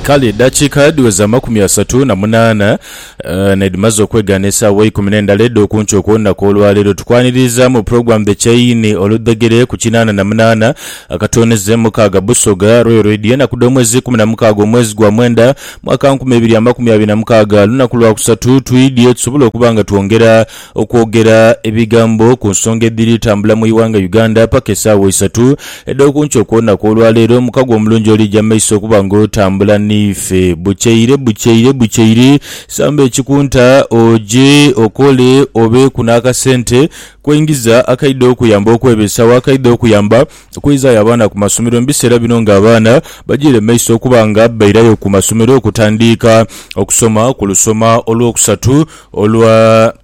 Kale eddakiika dhiweza amakumi asatu na munaana n'edhimaze okwegaana esaawa eikumi n'endala edh'okunkyo okw'olunaku olwaleero, tukwanirizaamu Program The Chain oludhegere ku kinaana na munaana akatooneze mukaaga Busoga Royal Radio enaku dh'omwezi ikumi na mukaaga omwezi gwa mwenda mwaka nkumi ibiri amakumi abiri na mukaaga lunaku lwakusatu twidhye tusobole okuba nga twongera okwogera ebigambo ku nsonga edhiri tambula mu ighanga Uganda paka esaawa isatu edhokunkyo okwona kwolwaleero mukago omulungi olija mu maiso okuba nga otambula niife bukyeire bukyeire bukyeire samba ekikunta oje okole obeeku n'akasente kwengiza akaidha okuyamba okwebesawo akaidha okuyamba okweizayo abaana ku masomero mu biseera bino nga abaana bajiire mu maiso okuba nga bairayo ku masomero okutandiika okusoma ku lusoma olwokusatu Olwa.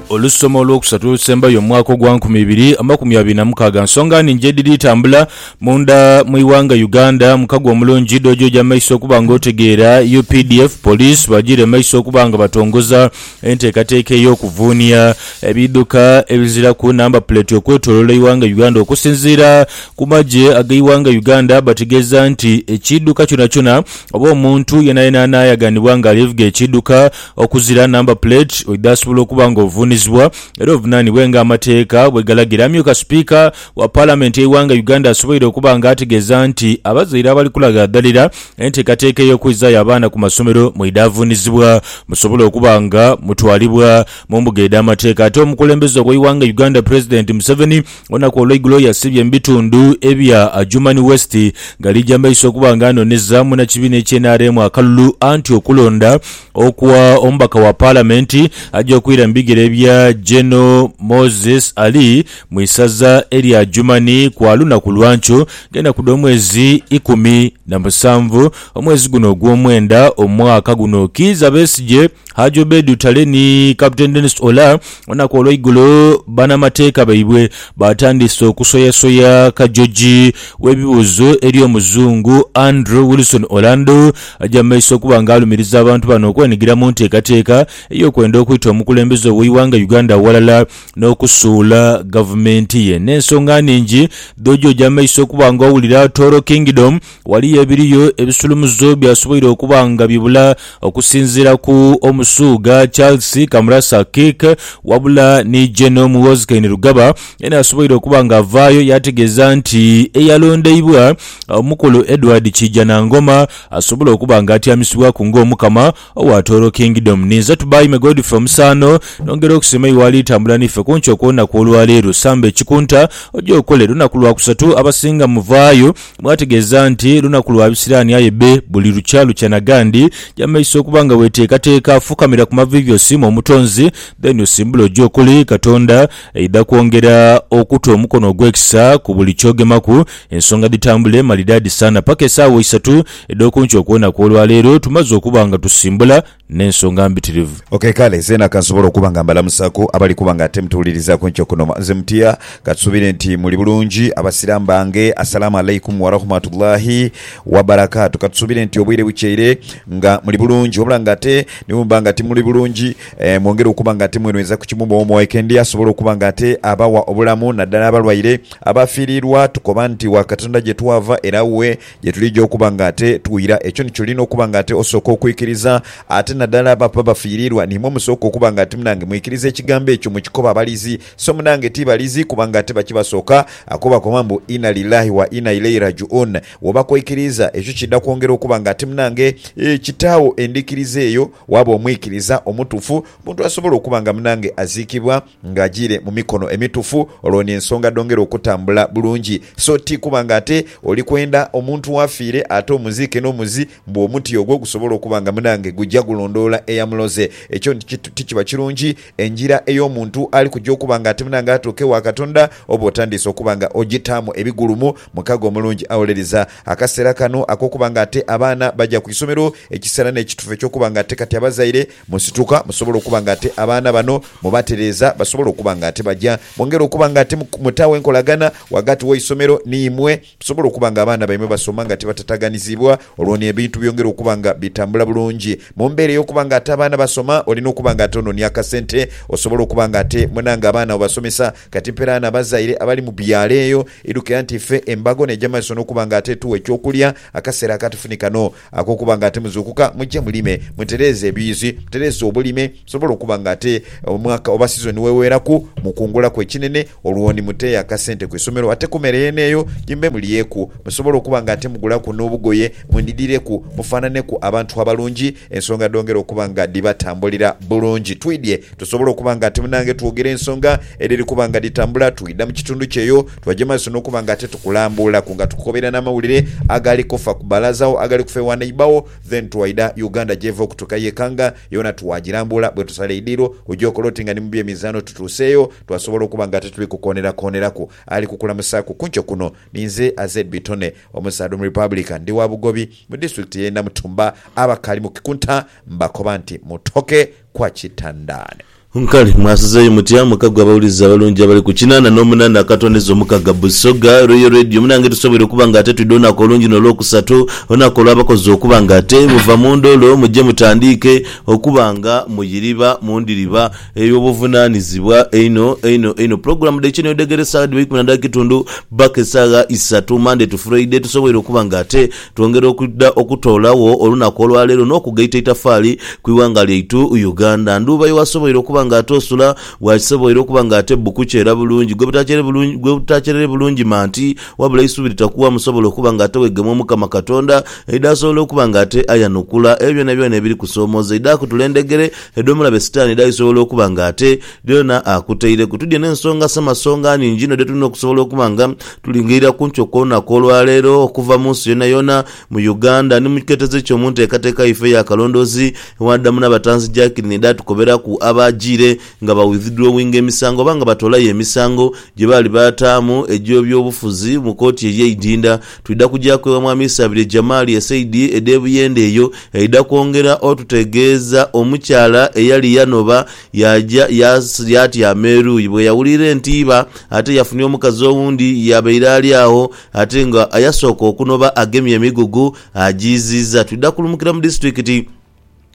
Olusoma olwokusatu olusembayo mu mwaka ogwa nkumi ibiri amakumi abiri na mukaaga nsonga nhingi edhiri tambula munda mu ighanga Uganda. Mukago omulungi dhojoja maiso okuba nga otegeera updf, police bajire maiso okuba nga batongoza Enteekateeka ey'okuvuunia ebiidhuka ebiziraku namba puleti okwetoloola eighanga Uganda okusinziira ku magye ag'eighanga Uganda bategeeza nti ekiidhuka kyonakyona oba omuntu yenayena anaayaganibwa nga alivuga ekiidhuka okuzira namba puleti oidha asobola okuba nga ovuunizibwa era ovunanibwe nga amateeka bwegalagira Amyuka sipiika wa palamenti y'eighanga Uganda asoboire okuba nga ategeeza nti abazaire abali kulaghadhalira Enteekateeka ey'okwizaayo abaana ku masomero mwidhaavuunizibwa musobole okuba nga mutwalibwa mu mbuga edh'amateeka. Ate omukulembeze ow'eighanga Uganda President Museveni olunaku olweigulo yasiibye mu bitundu ebya Adjumani West nga ali gya maiso okuba nga anoneza munakibiina ekye nrm akalulu anti okulonda okwa omubaka wa palamenti aja okwira mu bigere bya General Moses Ali Mu isaza elya Jumani kwa lunaku lwa nkyo ng'enaku dh'omwezi ikumi na musanvu omwezi guno ogw'omwenda omwaka guno, Kiiza Besigye, Haji Obed Utale ni Captain Denis Olar olunaku olw'eigulo banamateeka baibwe baatandise okusoyasoya Kajoji w'ebibuuzo eri Omuzungu Andrew Wilson Orlando aja mu maiso okuba nga alumiriza abantu bano okwenigira mu nteekateeka ey'okwenda okwita omukulembeze ow'eighanga Uganda aghalala n'okusuula gavumenti ye. N'ensonga nhingi dhoja oja amaiso okuba nga owulira Toro Kingdom, waliyo ebiriyo ebisulumuzo byasoboire okuba nga bibula okusinziira ku Omusuuga Charles Kamurasa Kirk wabula ni General Muhoozi Kainerugaba yena asoboire okuba nga avaayo yaategeeza nti eyalondeibwa Omukulu Edward Kiijanangoma asobola okuba nga atyamisibwaku ng'Omukama Owaatooro Kingdom. Ninze Tubaime Godfrey Omusaano, nongera okusima iwe ali tambula niife kunkyo okw'olunaku olwaleero. Samba ekikunta, oje okole. Lunaku Lwakusatu, abasinga muvaayo mwategeeza nti lunaku lwa bisiraani aye be buli lukya lukya na gandi. Ja mumaiso okuba nga weteekateeka, fukamira ku maviivi osiime Omutonzi, then osimbule oje okole. Katonda aidha kwongera okuta omukono ogw'ekisa ku buli ky'ogemaku, ensonga dhitambule malidaadi saana. Paka esaawa isatu. edh'oku nkyo kwona kw'olwa leero tumaze okuba nga tusimbula n'ensonga mbitirivu. Ok, kale zeena ka nsobole okuba nga mbalamusaaku abali kuba nga ate mutuwuliriza ku nkyo kuno. Mubanze mutya? Ka tusuubire nti muli bulungi, Abasiraamu bange. Assalaamu Alaikum Warahmatullaahi Wabarakaatu. Ka tusuubire nti obwire bukyeire nga muli bulungi. Wabula nga ate ni bwe muba nga timuli bulungi, mwongere okuba nga ate mwenhweza ku kimu mu omu oekendi asobole okuba nga ate abawa obulamu, naddala abalwaire, abaafiiriirwa. Tukoba nti wa Katonda gye twava era wuwe. Ye tulija okuba nga ate twira. Ekyo nikyo olina okuba nga ate osooka okwikiriza. Ate nadala abo ababa bafiiriirwa, niimwe musooka okuba nga ati munange mwikiriza ekigambo ekyo mu kikoba abalizi. So munange ti balizi, kubanga ate bakibasooka. Ako bakoba mbu Inna Lillahi wa Inna Ilaihi Raji'un. Woba koikiriiza, ekyo kiidha kwongera okuba nga ati munange kitaagho endhikiriza eyo. Waaba omwikiriza omutuufu, omuntu asobola okuba nga munange aziikibwa. nga ajiire mu mikono emitufu, olwo n'ensonga dhongere okutambula bulungi. So ti kuba nga ate oli kwenda omuntu w'afiire ate omuziike n'omuzi mbu omuti ogwo gusobole okuba nga munange guja gulondoola eyamuloze. Ekyo ti kiba kirungi. Engira ey'omuntu ali kuja okuba nga ati munange atuuke ewa Katonda oba otandiise okuba nga ojitaamu ebigulumu. Mukago omulungi awolereza. Akaseera kano ak'okuba nga ate abaana baja ku isomero, ekiseera n'ekitufu eky'okuba nga ate kati abazaire Musituka, musobola okuba nga ate abaana bano mubatereeza basobola okuba nga ate baja. Mwongere okuba nga ate mutawo enkolagana ghagati w'eisomero ni imwe. Musobola okuba nga abaana baimwe basoma nga tibatataganizibwa, olwo ni ebintu byongera okuba nga bitambula bulungi. Mu mbeera ey'okuba nga ate abaana basoma olina okuba nga ate ononia akasente osobole okuba nga ate munange abaana obasomesa. Kati mperaano abazaire abali mu byalo eyo idhukira nti ife embago n'eja maiso n'okuba nga ate etuwa eky'okulya akaseera akatufu ni kano. Ag'okuba nga ate muzuukuka, muje mulime, mutereeze ebiyuzi, mutereeze obulime, musobole okuba nga ate omwaka oba sizoni bweweeraku, mukungulaku ekinene, olwo ni mute akasente ku isomero ate ku mere yeene eyo gye mube mulyeku, musobole okuba nga ate mugulaku n'obugoye, mwenidhireku, mufaanhaneku abantu abalungi, ensonga dhongere okuba nga dhibatambulira bulungi. Twidhye tusobole okuba nga ate munange twogere ensonga edhiri kuba nga dhitambula, twidha mu kitundu kyo eyo, Twaja mu maiso n'okuba nga ate tukulambuulaku nga tukukobera n'amawulire agali kufa ku balaza wo, agali kufa ewa neighbour wo, then twaidha Uganda gyeva okutuuka ye Kanga yoona twagilambuula. Bwetusala eidiiro oja okola oti nga ni mu by'emizaano tutuuseeyo twasobola okuba nga ate tuli kukoonerakooneraku. Ali kukulamusaaku ku nkyo kuno ni nze Azed Bitone omusaadha Omurepublican. Ndi wa Bugobi mu disitulikiti y'e Namutumba. Abakaali mu kikunta mbakoba nti mutoke kwa Kitandaane. Nkale mwasizeeyo mutya mukago abawulizi abalungi abali ku kinana nomunana akatondeza omukaga Busoga Royal Radio munange tusoboire okuba nga ate twidha olunaku olungi nolwokusatu olunaku olwabakozi okuba nga ate muva mundholo muje mutandiike okuba nga muyiriba mundhiriba eyobuvunanizibwa einho einho einho pulogulamu dhaikyo newedhegere saawa dhiba ikumi nadhakitundhu bbaka esagha isatu Monday to Friday tusoboire okuba nga ate Twongera okwidha okutoolagho olunaku olwaleero n'okugaita eitafaali ku ighanga lyaitu Uganda. Ndhuuba yo wasoboire okuba nga ate osula, wakisoboire okuba nga ate bbu kukyera bulungi, gwebutakyerere bulungi manti, wabula eisubi litakuwa musobola okuba nga ate wegemwa Omukama Katonda, aidha asobola okuba nga ate ayanukula ebyo byonabyona ebiri kusoomooza, aidha akutula endhegere edh'omulabe Sitani dhaaisobola okuba nga ate Byona akutaireku. Tudye n'ensonga samasonga nhingi inho dhetulina okusobola okuba nga tulingaira kunki okw'olunaku olwaleero okuva mu nsi yoonayoona, mu Uganda ni mu kiketezo eky'omu nteekateeka yaife ey'akalondoozi ewadamu n'abatanzi Jacqueline edhatukoberaku abaajiire nga ba withdrawinga emisango oba nga batoolayo emisango gyebaali baataamu egy'ebyobufuzi mu kooti ey'eidinda. Twidha kujaku ewa Mwami Isabirye Jamali esaidi edh'e Buyende eyo eidha kwongera otutegeeza omukyala eyali yanoba Yaaja, yaas, yaatyama eruuyi. Bwe yawulira entiiba, ate yafunha omukazi owundi yabaire ali agho, ate nga yasooka okunoba agemye emigugu, agiiziiza. Twidha kulumukira mu disitulikiti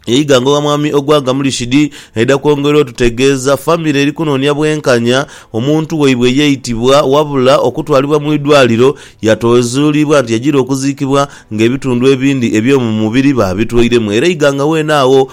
ye Iganga ogha Mwami Ogwanga Murishidi, aidha kwongera otutegeeza famire eri kunoonia bwenkanya, omuntu waibwe yaitibwa wabula okutwalibwa mu idwaaliro yatoezuulibwa nti yajiire okuziikibwa ng'ebitundu ebindi eby'omu mubiri baabitwairemu era Iganga weene agho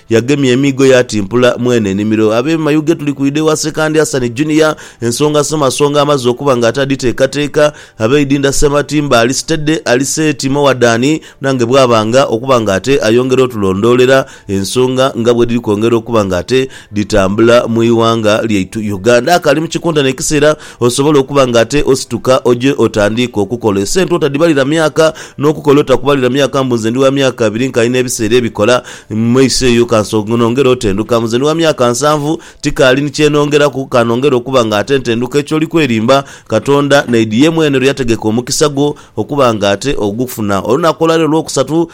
Yagemye emiigo yaatimpula mwene enimiro. Abeemayuge tuli kwidha ewa Sekandi Hassan Junior, ensonga somasonga amaze okuba nga ataadhiteekateeka. Abeidinda Ssematimba ali sitede, ali seeti mowadhaani nange bwabanga okuba nga ate ayongera otulondoolera ensonga nga bwedhiri kwongera okuba nga ate dhitambula mu ighanga lyaitu Uganda. Akaali mu kikontana ekiseera Osobola okuba nga ate osituka oje otandiike okukola. Esente otadhibalira myaka, n'okukola otakubalira myaka mbu nze ndi wa myaka abiri nkaali n'ebiseera ebikola, mu maiso eyo ka nongere otenduka mbu nze ndi wa myaka nsanvu tikaali ni kye nongeraku, ka nongere okuba nga ate ntenduka. Ekyo oli kwerimba. Katonda naidhi ye mwene lwe yategeka omukisa gwo okuba nga ate ogufuna. Olunaku olwaleero Lwokusatu,